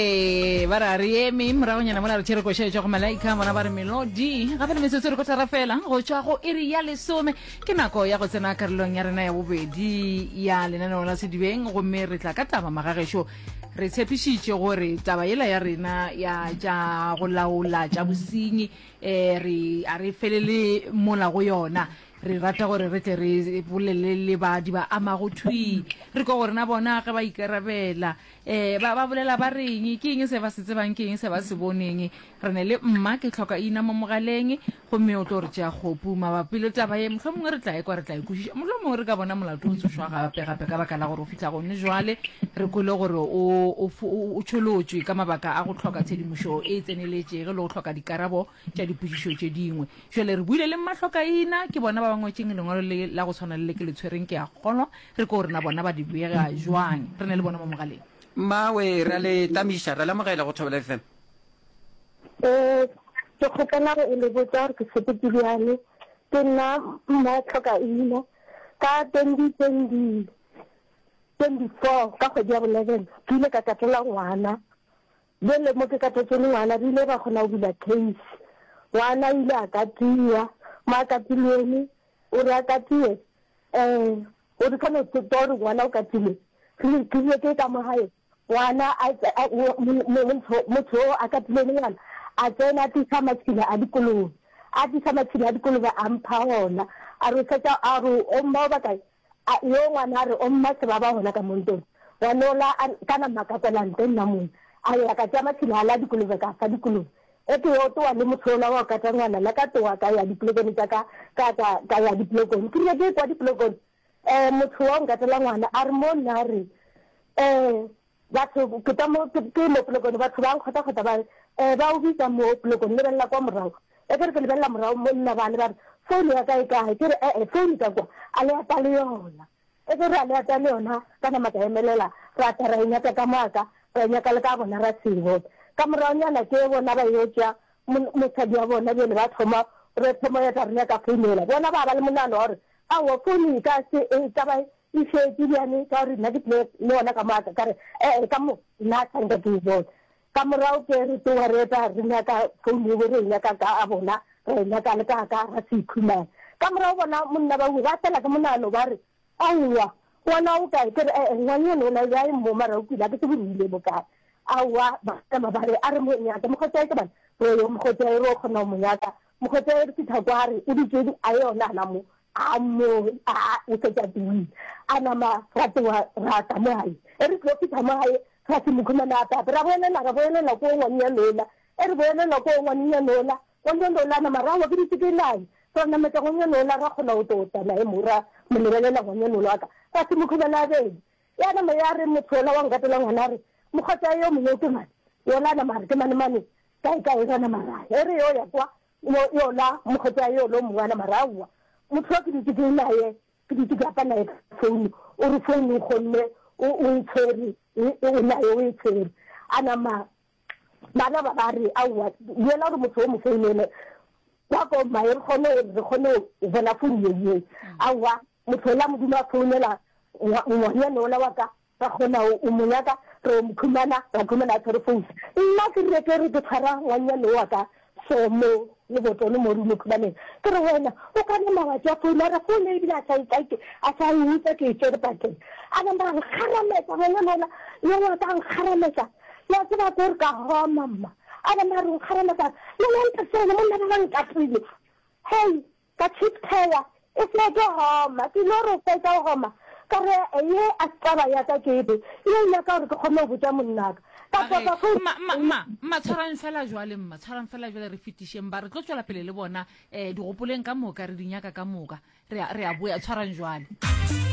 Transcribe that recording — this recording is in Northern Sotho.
ee ba re a re eme moragonyana mola re tšhere koša e tšwa go malaika bona ba re melodi gape le metsotso re ko thara fela go tšwa go iri ya lesome ke nako ya go tsena karolong ya rena ya bobedi ya lenaneo la sedibeng gomme re tla ka taba magagešo re tshepišitše gore taba yela ya rena ya tša go laola tša bosenyi um re a re felele mola go yona re rata gore re tle re bolele le badi ba amago thwi re ko gore na bona ge ba ikarabela Ee, ba, ba bolela ba reng? Ke eng se ba se tsebang, ke eng se ba se boneng? Re ne le mma, ke tlhoka ina mo mogaleng, gomme o tlo re tšea kgopu. Mabapi le taba ye, mohlho mongwe re tla ekwa, re tla ikwešiša. Mohlho mongwe re ka bona molato o tsošwa gape, gape ka baka la gore o fihla gone jwale, re kwele gore o, o, o, o tšholotšwe ka mabaka a go tlhoka tshedimošo e tseneletšege le go tlhoka dikarabo tša dipotšišo tše dingwe. Bjale re buile le Mmahlokaina, ke bona ba ba ngwetšeng lengwalo le la go swana le le ke le tshwereng, ke a kgolwa. Re ko re na bona ba di bega bjang. Re na le bona mo mogaleng. Mmawe, re a le tamiša. Re a le amogela go Thobela FM. Ee, ke kgopela go e le botša gore ke sepeti bjang. Ke nna Mmahlokaina. Ka twenty twenty, twenty four, ka kgwedi ya bo eleven, ke ile ka tatela ngwana. Bjale mo ke ka potšo le ngwana, re ile ra kgona go bula case. Ngwana o ile a katiwa, mo a katilwene, o re a katiwe, um o re ka no se tswa gore ngwana o katilwe, re tlile ke ka mo gae, ngwana a, motho motho o a katilwene ngwana, a tsena a tlisa matšhila a dikolobe, a tlisa matšhila a dikolobe a mpha ona, a re o fetša, a re o mma o bakae, A yo ngwana a re o mma sebaba gona ka mo ntong, wa no la a ka nama ka kwela nte nna mong. A ya ka tšea matšhila a la dikolobe ka fa dikolobe. Eke yo towa le motho ola wa go kata ngwana la ka towa ka ya dipolokone tša ka ka ka ka ya dipolokone. Ke rile ke ekwa dipolokone eh motho wa go nkatela ngwana a re mo nna a re eh Batho, ke tla mo, ke, ke mo polokone, batho ba nkgotakgota ba re, Eh, ba o bitsa mo polokone, lebelela kwa morago. E ke re ke lebelela morago, monna bale ba re, Founu ya ka e kae? Ke re, E-e, founu ka kwa, a le ata le yona. E ke re, A le ata le yona? Ka nama ka emelela, ra tla ra e nyaka ka moka, ra e nyaka le ka bona, ra se e bone. Ka moragonyana ke bona ba yo tšea mo, mosadi wa bona bjale ba thoma, re thoma ya tla re nyaka founu yela. Bona ba ba le monagano wa gore, Aowa, founu e ka se, e ka ba E šetše bjale ka gore nna ke tlile le ona ka moka, ka re, Ee, ka mo, nna a tshwanka ke e bone. Ka morago ke re tsoga re eta re nyaka founo yebo, re e nyaka ka a bona, ra e nyaka le ka ka ga se ikhumane. Ka morago bona monna ba ba fela ke monano ba re, Aowa, ngwana o kae? Ke re, Ee, ngwang yone o na bja e mmo mara o kwile, a ke tsebe re ile bo kae. Aowa, ba nama ba re, A re mo nyake, mokgotšae ke bana, re yo mokgotšae re yo kgona go mo nyaka. Mokgotšae re fihla kwa re o dutšeng a yona gona mo, A mo a o fetša teng. A nama ra tloga ra tla mo gae. E re tlo fitha mo gae, ra se mokhumana a pape. Ra boelela ra boelela ko ngwanenyane yola. E re boelela ko ngwanenyane yola, ngwanenyane yola a nama ra wa ke ditshikelane. Ra nametša ngwanenyane yola ra kgona go tlo tla naye mo ra mo lebelela ngwanenyane yola wa ka. Ra se mokhumana a beng. Ya nama ya re motho yola wa nkatela ngwana a re, Mokgotsa yo mongwe o ke mane? Yola a nama a re, Ke mane mane kae kae ra nama ra ya. E re yo ya kwa Yo, yola mokgethwa ya yola o mongwana, mara aowa. Motho wa ke dutše ke naye, ke dutše ke apa naye ka founu, o re founu o kgonne, o, o e tshwere, e, e, o naye o e tshwere. A nama, bana ba ba re, aowa, duela gore motho o mo founele, kwa ko mmaye, re kgone, re kgone go bona founu ye, ye. Aowa, motho ola Modimo a founela ngwa, ngwanyane ola wa ka, Ka gona o, o mo nyaka? Re yo mo khumana, ra khumana a tshwere fousa. Nna ke rile, Ke re ke tshwara ngwannyane owa ka so mo lebotono mo rumo khumaneng, ke re, Wena o ka nama wa tšea founu a re founu ebile a sa e take, a sa e utsa ke e tšere pakeng. A nama a nkgarametsa, ngwana lona yo wa ka a nkgarametsa. Le a tseba ko re ka homa mma. A nama a re o nkgarametsa a re, Lona ntate wena monna ba ba nkapile. Hei! Ka cheap tire e se tlo goma, ke no re fetša go goma ka re ye a se taba ya ka ke be ye e nyaka gore ke kgone go botša monnaka. Ka A re, topa phone. Mma, mma, mma, mma, tshwarang fela jwale, mma, tshwarang fela jwale, re fetišeng ba, re tlo tšwela pele le bona, eh, digopoleng ka moka, re di nyaka ka moka, re a, re a boya, tshwarang jwale.